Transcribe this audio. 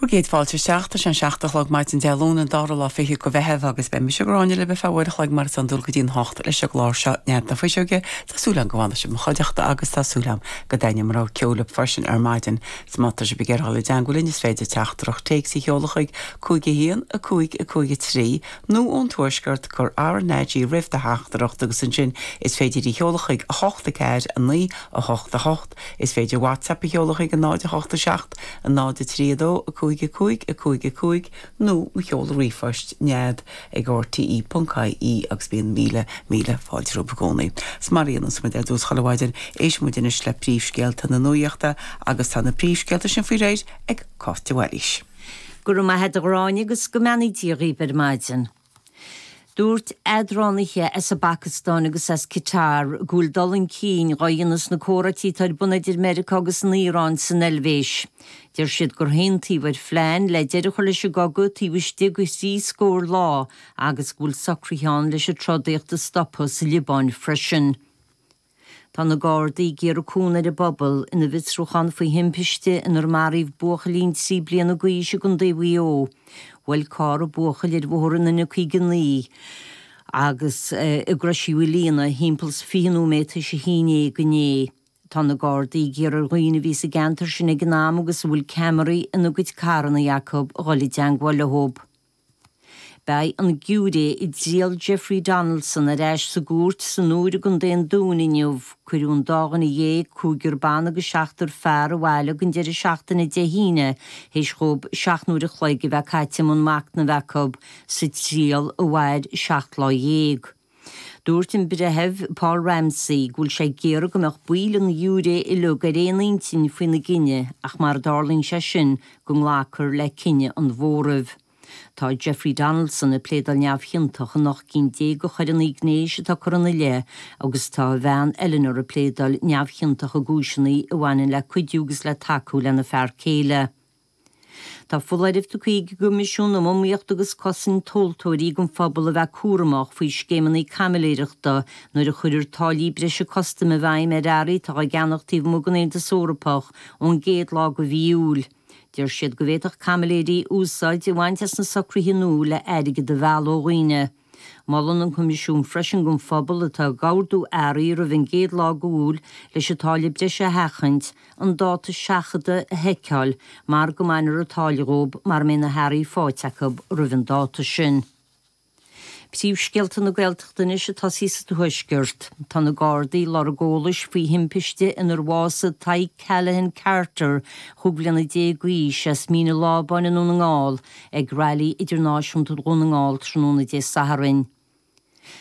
Bhur gcéad fáilte isteach, tá sé an seacht a chlog maidin Dé Luain an dara lá fichead de Mheitheamh agus beidh mise Gráinne libh ar feadh uair a chloig mar is iondúil go dtí an hocht leis an gclár seo Nead na Fuiseoige, tá súil agam go bhfanfaidh sibh i mo chuideachta agus tá súil agam go dtaitneoidh mo rogha ceoil libh freisin ar maidin 's má tá sibh ag iarraidh dul i dteangmháil linn is féidir teachtaireacht téics a sheoladh chuig 515 553 nó ón Tuaisceart cuir RnaG roimh do theachtaireacht agus ansin is féidir í a sheoladh chuig 8 4 9 8 8 Is féidir WhatsApp a sheoladh chuig 0 8 7 0 3 2 5 5 5 5 nó mo sheoladh ríomhphoist, nead, ag rte ponc IE agus bíonn míle, míle fáilte romhaibh i gcónaí. 'S mar a dhéananns muid ar dtús chuile mhaidin, éisteann muid anois le príomhscéalta na nuaíochta agus tá na príomhscéalta sin faoi réir ag Cáit de Bhailís. Go raibh maith agat a Ghráinne agus go mbeannaí Dia dhíbh ar maidin. Dúirt eadránaithe as an bPacastáin agus as Catar go bhfuil dul chun cinn dhá dhéanamh sna comhráití atá ar bun idir Meiriceá agus an Iaráin san Eilvéis. Deir siad gur haontaíodh ar phlean le deireadh a chur leis an gcogadh taobh istigh de thrí scór lá agus go bhfuil socruithe ann leis an trodaíocht a stopadh sa Liobáin freisin. Tá na Gardaí ag iarraidh cúnamh ón bpobal ina bhfiosrúchán faoi thimpiste inar maraíodh buachaillín trí bliana dh'aois i gContae Mhaigh Eo. Bhuail carr an buachaill ar bhóthar an N59 gar do Chrois Mhaoilíona thimpeall 20 nóiméad tar éis a haon dhéag inné. Tá na Gardaí ag iarraidh ar dhaoine a bhí sa gceantar sin ag an am agus a bhfuil ceamaraí ina gcuid carrannaí acu a dhul i dteangmháil leo. Beidh an giúiré i dtriail Jeffrey Donaldson ar ais sa gcúirt san Iúr i gContae an Dúin inniu. Cuireadh an dáréag, cúigear ban agus seachtar fear, abhaile ag an deireadh seachtaine Dé hAoine théis dhóibh seacht n-uair a chloig a bheith caite i mbun machnaimh acu sa triail a mhair seacht lá dhéag. Dúirt an Breitheamh Paul Ramsey go bhfuil sé ag iarraidh go mbeadh baill an ghiúiré uilig ar aon intinn faoina gcinneadh ach mara dtarlaíonn sé sin go nglacfar le cinneadh an mhóraimh. Tá Jeffrey Donaldson ag pléadáil neamhchiontach in ocht gcinn déag de choireannaí gnéis atá curtha ina leith agus tá a bhean Eleanor ag pléadáil neamhchiontach i gcúiseannaí a bhaineann le cuidiú agus le tacú lena fear céile. Tá foláireamh tugtha ag an gCoimisiún um Iomaíocht agus Cosaint Tomhaltóirí don phobal a bheith cúramach faoi scéimeannaí caimiléireachta nuair a chuirfear táillí breise custaim i bhfeidhm ar earraí atá á gceannach taobh amuigh den Aontas Eorpach ón gcéad lá de mhí Iúil. Deir siad go bhféadfadh caimiléirí úsáid a bhaint as na socruithe nua le airgead a mhealladh ó dhaoine. Molann an Coimisiún freisin don phobal atá atá ag ordú earraí roimh an gcéad lá go Iúil leis an táille bhreise a sheachaint, an dáta seachadta a sheiceáil mar go mbainfear an táille dhóibh mara mbeidh na hearraí faighte acu roimh an dáta sin. Príomhscéalta na Gaeltachta anois ag tosaí sa Tuaisceart. Tá na Gardaí ag lorg eolais faoi thimpiste inar bhásaigh Tadhg Callaghan Carter, chúig bhliana déag d'aois, as Mín a' Lábáin i nDún na nGall, ag Railí Idirnáisiúnta Dhún na nGall tráthnóna Dé Sathairn.